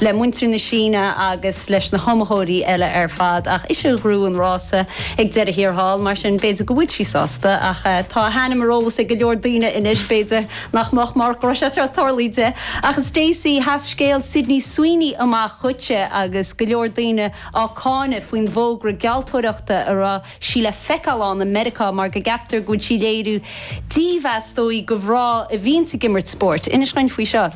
le muintir na Síne agus leis na hiomaitheoirí eile ar fad ach ise a ghnóthaigh an rása ag deireadh thiar thall, mar sin b'fhéidir go bhfuil sí sásta ach tá a hainm ar eolas ag go leor daoine anois, b'fhéidir nach mbeadh marach an rása agus ar tharlaigh di. Ach a Stacey, sheas scéal Sydney Sweeney amach dhuitse agus go leor daoine á cáineadh faoin bhfógra gealltóireachta a raibh sí le feiceáil ann i Meiriceá mar go gceaptar go bhfuil sí ag léiriú dímheas is dóigh do mhná a bhíonns ag imirt spóirt. Inis dhúinn faoi seo.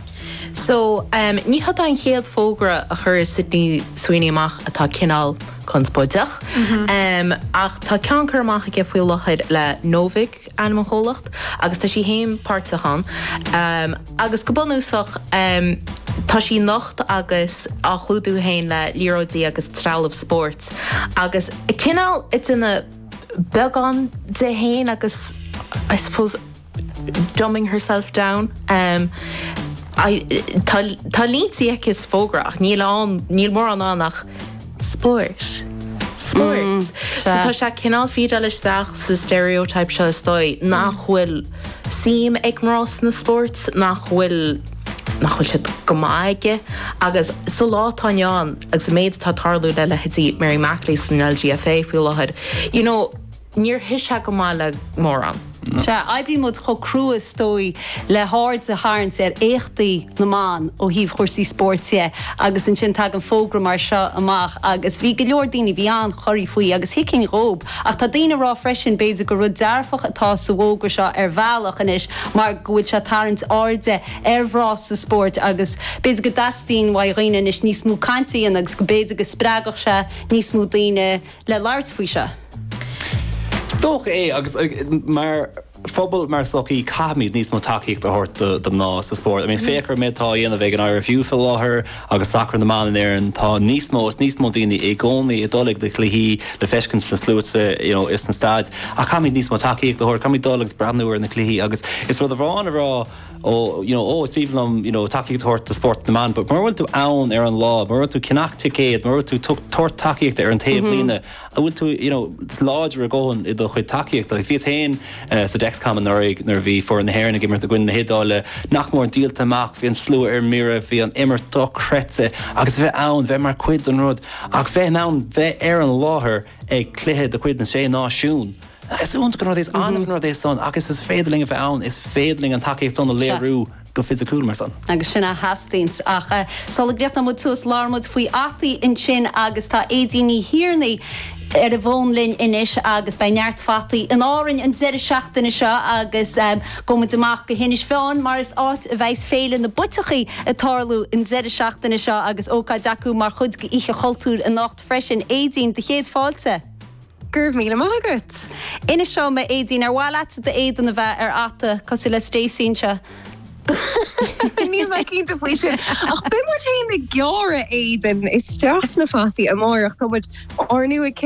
So, ní hé an chéad fógra a chuir Sydney Sweeney amach atá cineál conspóideach, ach tá ceann curtha amach aici faoi láthair le Novig, ainm an chomhlachta agus tá sí féin páirteach ann agus go bunúsach tá sí nocht agus á chlúdú féin le liathróidí agus trealamh spóirt agus cineál ag déanamh beagán di féin agus I suppose dumbing herself down tá línte aici sa fógra ach níl mórán ann ach Spóirt. Spóirt. So tá sé cineál ag fídeáil isteach sa stereotype seo, is dóigh, nach bhfuil suim ag mná sna spóirt, nach bhfuil, nach bhfuil siad go maith aige. Agus sa lá atá inniu ann, agus an méid atá tarlaithe le leithéidí Mary McAleese an LGFA faoi láthair, you know, Níor shuigh sé go maith le mórán. Sea, oibríonn muid chomh crua is dóigh le haird a tharraingt ar éachtaí na mban ó thaobh chúrsaí spóirt dhe agus ansin tagann fógra mar seo amach agus bhí go leor daoine, bhí iad corraithe faoi agus thuigfinn dhóibh ach tá daoine a rá freisin b'fhéidir gur rud dearfach atá sa bhfógra seo ar bhealach anois mar go bhfuil sé ag tarraingt airde ar mhná sa spóirt agus b'fhéidir go dteastaíonn ó dhaoine anois níos mó cainte a dhéanamh agus go b'fhéidir go spreagfadh sé níos mó daoine le labhairt faoi seo. Is dócha é agus mar phobal, mar sochaí caithfimid níos mó tacaíocht a thabhairt do mhná sa spórt. I mean féach ar an méid atá á dhéanamh ag an IRFU faoi láthair agus sacar na mban in Éirinn, tá níos mó is níos mó daoine i gcónaí ag dul ag na cluichí le feiscint sna sluaite you know is sna staideanna ach caithfimid níos mó tacaíocht a thabhairt, caithfimid dul agus breathnú ar na cluichí agus is rud amháin a rá ó you know ó is aoibhinn liom you know tacaíocht a thabhairt do spórt na mban but mura bhfuil tú ann ar an lá, mura bhfuil tú ag ceannach ticéad, mura bhfuil tú ag tabhairt tacaíochta ar an taobh líne, an bhfuil tú you know láidir do dhóthain i do chuid tacaíochta? Like bhíos féin eh, sa Dexcom anuraidh nuair a bhí foireann na hÉireann ag imirt i gcoinne na hIodáile, nach mór díolta amach, bhí an slua ar mire, bhí an imirt dochreidte agus bheith ann, bheith mar cuid den rud ach bheith ann, bheith ar an láthair ag cluiche de chuid na Sé Náisiún. Is iontach an rud é, agus is féidir linn a bheith ann, is féidir linn an tacaíocht san a léiriú go fisiciúil mar san. Agus sin a theastaíonns. Ach sula gcríochnóidh muid suas, labhair muid faoi fhataí ansin agus tá Aedín Ní Thiarnaigh ar an bhfón linn anois agus beidh neart fataí in Árainn an deireadh seachtaine seo agus gabhfaidh muid amach go hInis Mheáin mar is áit a bheas Féile na bPuiteachaí ag tarlú an deireadh seachtaine seo agus ócáid acu mar chuid d'Oíche Chultúir anocht freisin. Aedín, do chéad fáilte. Go raibh míle maith agat. Inis dom, a Aedín, ar mhaith leat d'éadan a bheith ar fhata cosúil le Stacey anseo? Níl mé cinnte faoi sin, ach beidh muid féin ag gearradh éadain isteach sna fataí amárach. Tá muid ar ndóigh ag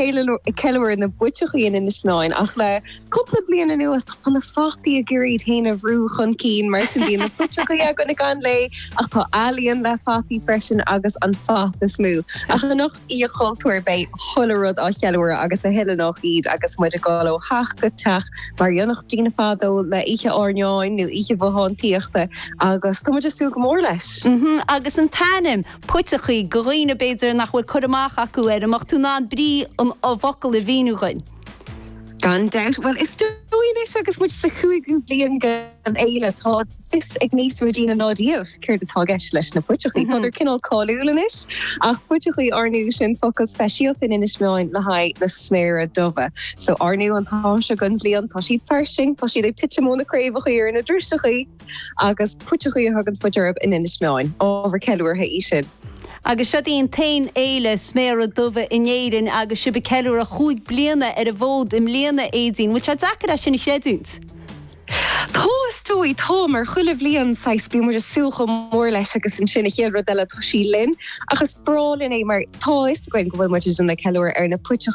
ceiliúradh na bpuiteachaí in Inis Meáin, ach le cúpla bliain anuas tá na fataí ag iarraidh iad féin a bhrú chun cinn, mar sin bíonn na puiteachaí againn i gcónaí, ach tá ealaíon le fataí freisin agus an fata is lú. Ach anocht Oíche Chultúir beidh chuile rud á cheiliúradh agus a thuilleadh nach iad agus muid ag dul ó theach go teach mar a dhéanfadh daoine fadó le oíche airneáin nó oíche bhothántaíochta agus tá muid ag súil go mór leis! Agus an t-ainm, Puiteachaí, do dhaoine b'fhéidir nach bhfuil cur amach acu air, an mbeadh tú in ann brí an fhocail a mhíniú dhuinn? Gan dabht, bhuel is dóigh anois agus muid sa chúigiú bliain den fhéile, tá. Fios ag níos mó daoine ná riamh céard atá i gceist leis na puiteachaí. Tádar cineál cáiliúil anois ach puiteachaí ar ndóigh sin focal speisialta in Inis Meáin le haghaidh na sméara dubha. So ar ndóigh an t-am seo den bhliain tá siad fairsing, tá siad ag titim óna craobhachaí ar na driseachaí agus puiteachaí a thuganns muid orthu in Inis Meáin. Ábhar ceiliúrtha í sin. Agus is í daoibh an t-aon fhéile sméara dubha in Éirinn agus sibh ag ceiliúradh cúig bliana ar an bhfód i mbliana, Aedín. Bhfuil sé deacair é sin a chreidiúint? Tá, is dóigh. Tá, mar chuile bhliain, saghas, bíonn muid ag súil chomh mór leis agus ansin, an chéad rud eile, tá sí linn. Ach is breá linn é mar tá a fhios againn go bhfuil muid ag déanamh ceiliúradh ar na puiteachaí.